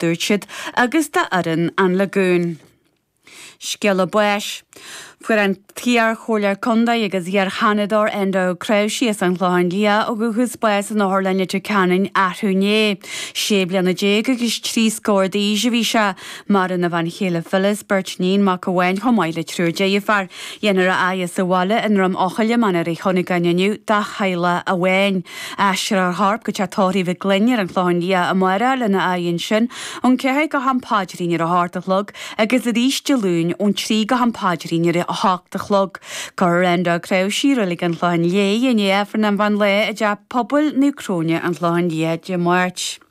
dúirt siad, agus d'fhoireann an Lagoon. Scéala báis. Fuair an t-iar-chomhairleoir contae agus iar-sheanadóir Enda Ó Cnáimhsí as an Chlochán Liath ó dhúchas bás in Otharlann Leitir Ceanainn arú inné. Sé bliana déag agus trí scór d'aois a bhí sé. Maireann a bhean chéile Phyllis, beirt iníon, mac amháin chomh maith le triúr deirfiúr. Dhéanfar a fhaire sa bhaile i nDroim Eochaille, Mainéar Uí Chuinneagáin inniu dá theaghlach amháin. Aistreofar a chorp go teach tórraimh Mhic Gloinn ar an Chlochán Liath amárach lena fhaire ansin, ón ceathair go ham paidrín ar a hocht a chlog agus arís Dé Luain ón trí go ham paidrín ar a hocht a chlog. Cuirfear Enda Ó Cnáimhsí i Reilig an Chlocháin Léith, i ndiaidh Aifreann an mheán lae i dTeach Pobail Naomh Cróine, An Clochán Liath, Dé Máirt.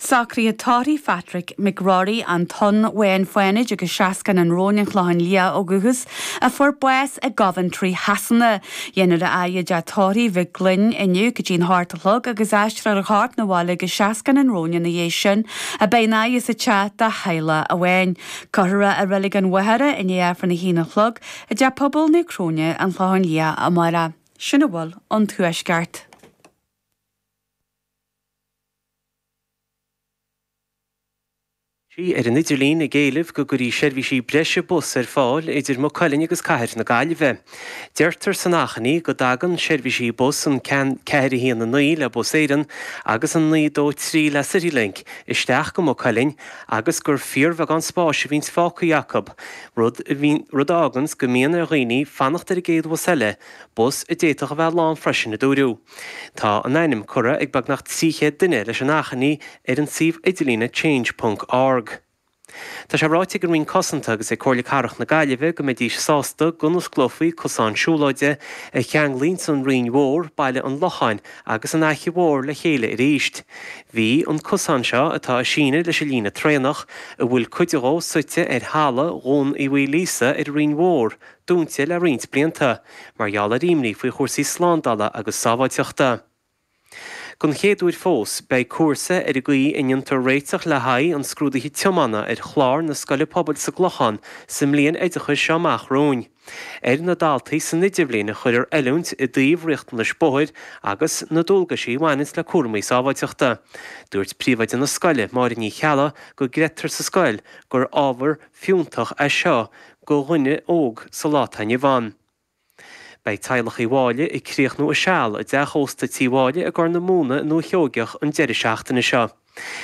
Socruithe tórraimh Phatrick McGrory, an Tonn Bháin Fánaid agus Seascann an Róin an Chlocháin Liath ó dhúchas, a fuair bás i gCoventry Shasana. Dhéanfar a fhaire i dteach tórraimh Mhic Gloinn inniu go dtí an hocht a chlog agus aistreofar a chorp 'na bhaile go Seascann an Róin ina dhiaidh sin ach beidh an fhaire sa teach dá theaghlach amháin. Cuirfear é i Reilig an Mhachaire i ndiaidh Aifreann a haon a chlog i dTeach Pobail Naomh Cróine, An Clochán Liath, amárach. Sin a bhfuil ón Tuaisceart. sí ar an idirlíon ag éileamh go gcuirfí seirbhísí breise bus ar fáil idir Maigh Cuilinn agus cathair na Gaillimhe. Deirtear san achainí go dtagann seirbhísí bus an ceathair a haon a naoi le Bus Éireann agus an naoi a dó trí le Citylink isteach go Maigh Cuilinn agus gur fíorbheagán spáis a bhíonns fágtha acu, rud a fháganns go mbíonn ar dhaoine fanacht ar an gcéad bhus eile, bus a d'fhéadfadh a bheith lán freisin, a dúradh. Tá a n-ainm curtha ag beagnach 300 duine leis an achainí ar an suíomh idirlíne Change ponc org. Tá sé ráite ag an Roinn Cosanta agus ag Comhairle Cathrach na Gaillimhe go mbeidís sásta go n-osclófaí cosán siúlóide a cheanglaíonns an Rinn Mhór, Baile an Locháin agus an Fhaiche Mhór le chéile arís. Bhí an cosán seo, atá ag síneadh leis an líne traenach, a bhfuil cuid dhó suite ar thalamh Dhún Uí Mhaoilíosa ar an Rinn Mhór, dúnta le roinnt blianta mar gheall ar imní faoi chúrsaí slándála agus sábháilteachta. Don chéad uair fós, beidh cúrsa ar an gcaoi a ndéantar réiteach le haghaidh an scrúdaithe tiomána ar chlár na Scoile Pobail sa gClochán sa mbliain oideachais seo amach romhainn. Ar na daltaí san idirbhliain a chuirfear oiliúint i dtaobh riachtanais bóthair agus na dualgaisí a bhaineanns le cúramaí sábháilteachta. Dúirt Príomhoide na Scoile, Máire Ní Cheallaigh, go gcreidtear sa scoil gur ábhar fiúntach é seo do dhuine óg sa lá atá inniu ann. Beidh teaghlach Uí Mháille ag críochnú a seal i dteach ósta Tí Mháille i gCorr na Móna i nDúiche Sheoigeach an deireadh seachtaine seo.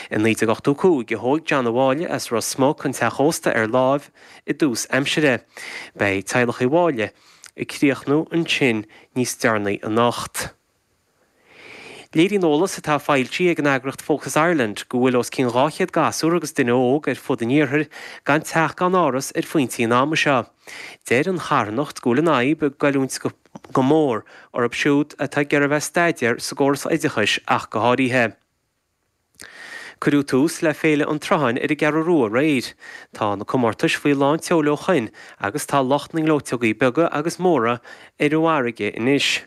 I 1985 a thóg John Ó Máille as Ros Muc an teach ósta ar láimh i dtús aimsire. Beidh teaghlach Uí Mháille ag críochnú ansin níos deireanaí anocht. Léiríonn eolas atá foilsithe ag an eagraíocht Focus Ireland go bhfuil os cionn 200 gasúr agus duine óg ar fud an iarthair gan teach gan áras ar phointe an ama seo. Deir an charthanacht go bhfuil an fhadhb ag goilliúint go mór orthu siúd atá ag iarraidh a bheith ag staidéar sa gcóras oideachais ach go háirithe. Cuireadh tús le Féile an tSrutháin ar an gCeathrú Rua aréir. Tá na comórtais faoi lán tseoil ó shoin agus tá lucht na ngleoiteogaí beaga agus móra ar an bhfarraige anois.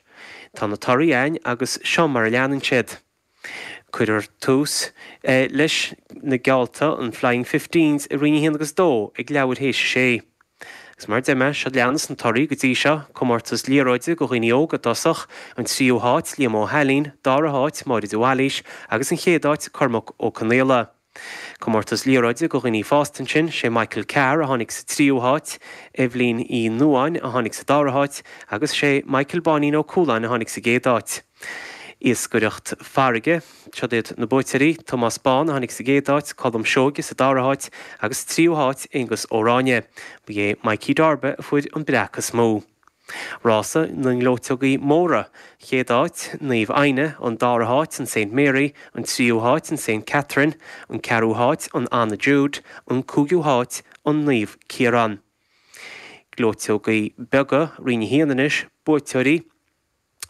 Tá na torthaí againn agus seo mar a leanann siad. Cuireadh tús leis na geallta, na Flying Fifteens, i roinn a haon agus a dó ag leathuair théis a sé. Agus mar a deirim seo a leanas na torthaí go dtí seo, comórtas liathróide do dhaoine óga i dtosach, an tríú háit Liam Ó hAilín, dara háit Máire de Bhailís agus an chéad áit Cormac Ó Conaola. Comórtas liathróide do dhaoine fásta ansin, sé Michael Carr a tháinig sa tríú háit, Eibhlín Uí Nuáin a tháinig sa dara háit agus sé Michael Báinín Ó Cualáin a tháinig sa gcéad áit. Iascaireacht farraige, Seo iad na buaiteoirí, Tomás Bán a tháinig sa gcéad áit, Colm Seoige sa dara háit agus tríú háit Aonghus Ó Ráinne. Ba é Mikey Darba a fuair an breac is mó. Rása na ngleoiteogaí móra, Chéad áit, Naomh Éanna, an dara háit an Saint Mary, an tríú háit an Saint Catherine, an ceathrú háit an Anna Jude, an cúigiú háit an Naomh Ciarán. Gleoiteogaí beaga, Roinn a haon anois, Buaiteoirí,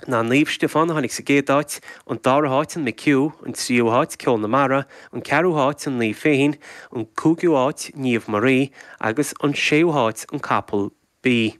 ná Naomh Stiofán a tháinig sa gcéad áit, an dara háit an McHugh, an tríú háit Ceol na Mara, an ceathrú háit an Naomh Feichín, an cúigiú áit Niamh Marie agus an séú háit an Capall B.